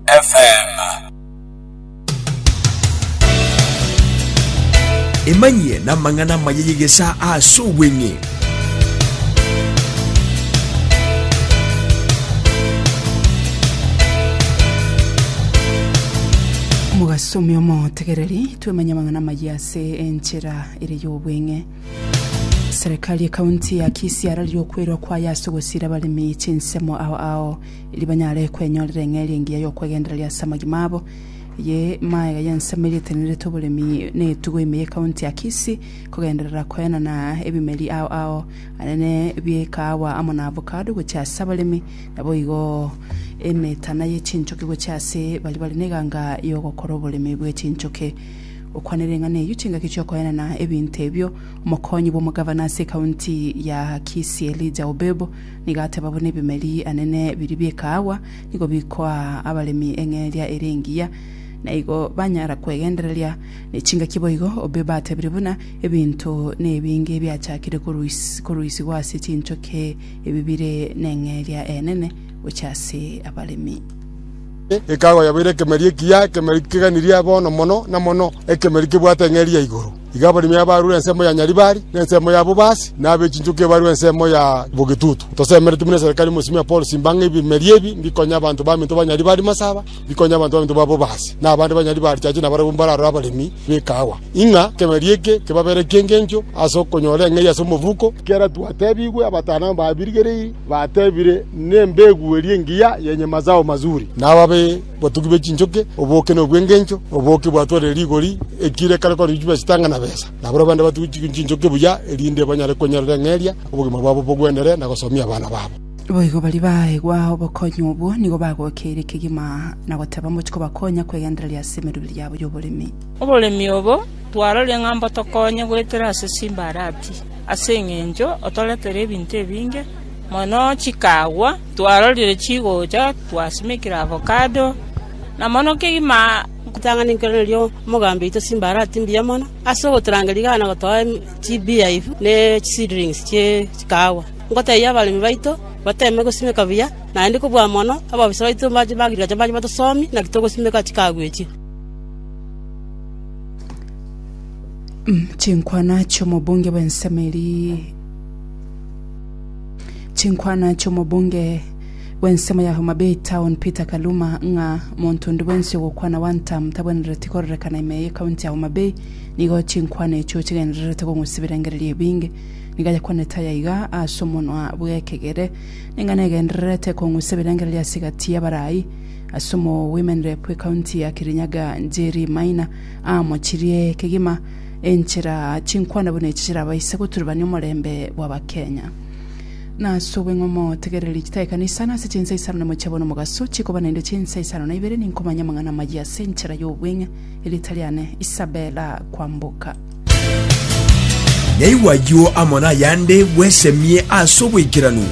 FM. Emanyie namang'ana amaya y'egesa ase obweng'e. mogasome omotegereri twemanye amang'ana amaya ase enchera ere y'obweng'e serikali ekaunti ya kisii ararire okwerwa kwayo ase ogosira abaremi chinsemo ao ao erio banyare kwenyorera eng'eria engiya y'okwegendereria ase amagima abo. Eye maega y'ensemo eria etenenerete oboremi na etugo ime ye county ya Kisii, kogenderera koenana ebimeri ao ao anene bie kaawa amo na avocado gochia ase abaremi, naboigo emetana ye chinchoki gochia ase baria bare neganga y'ogokora oboremi bwe chinchoki. Gokwanera eng'ana eyio chingaki chiokoenana ebinto ebio, omokonyi bw'omogavana ase county ya Kisii Elijah Obebo, Nigo ateba buna ebimeri anene biria bi'ekaagwa nigo bikoa abaremi eng'eria ere engiya, na igo banyara kwegendereria ne chingaki boigo. Obibe atebirie buna ebinto nebinge biachakire koruisigwa ase chinchoke ebi bire neng'eria enene gochia ase abaremi. Ekaagwa yabeire ekemeri ekiya, ekemeri keganirie bono mono na mono, ekemeri kebwate eng'eria ya igoro. Iga abaremi abarure ensemo ya Nyaribari, na ensemo ya Bobasi, na abe chinchoki abarure ensemo ya Bogetutu. Tosemeretie buna eserikari mosimia Paul simba ng'a ebimeria ebi mbikonya abanto baminto ba Nyaribari masaba, bikonye abanto baminto ba Bobasi, na abande ba Nyaribari chache nabarabwo mbararore abaremi b'ekaawa, ing'a ekemeria eke kebabere eki'engencho ase okonyora eng'eria ase omobuko. Ekiagera twatebigwe abatano ababirigereiri batebire, Nembegu eria engiya yenye mazao mazuri, na ababe. Botugi bwe chinchoki, oboke na obwengencho, oboke bwatwarire rigori, ekire ekare korwa richuba esitanga na besa. Nabarabwo bande batugi chinchoki buya, erinde banyare kwenyerera eng'eria, obogima bwabo bogwendere, na gosomia abana babo. Boigo baria baegwa obokonyi obwo nigo bagokeire kegima na goteba mochie kobakonya kwegendereria ase emeroberi yabo y'oboremi. Oboremi obo twaroria ng'a mbotokonye goetera ase chimbarati, ase engencho otoretera ebinto ebinge mono chikagwa. Twarorire chigocha, twasimekire avokado, na mono kegima nkotang'ani nkero nario omogambi oito chimbarati mbuya mono ase ogotorangeria igana gotoa chibeehive ne chiseedlings chie chikahawa. Nkotebia abaremi baito bateme gosimeka buya, naende kobua mono abofisa baito ba agriculture mbache batosomie naki togosimeka chikahawa echio. Chinkwana chi'omobunge bw'ensemo eria. Chinkwana chi'omobunge bw'ensemo ya Homa Bay Town Peter Kaluma ng'a monto onde bwensi ogokwana one term tabwenereti kororekana ime ye county ya Homa Bay nigo chinkwana echio chigendererete kong'usibera engereria ebinge. Nigo ayakwanete aya iga ase omonwa bw'ekegere, Ning'ana egendererete kong'usibera engereria ase egati y'abarai ase omogoimene bw'ecounty ya Kirinyaga Njeri Maina amochirie kegima enchera chinkwana buna echi chirabaise goturubania omorembe bw'Abakenya. Na ase obweng'u motegereri chitaekana isano ase chinsa isano na mochie bono omogaso chikoba naende chinsa isano na ibere ninkomanya amang'ana amayia ase enchera y'obweng'e erieta riane Isabella Kwamboka. Naigwa ayio amo nayande bwesemie ase oboikeranu.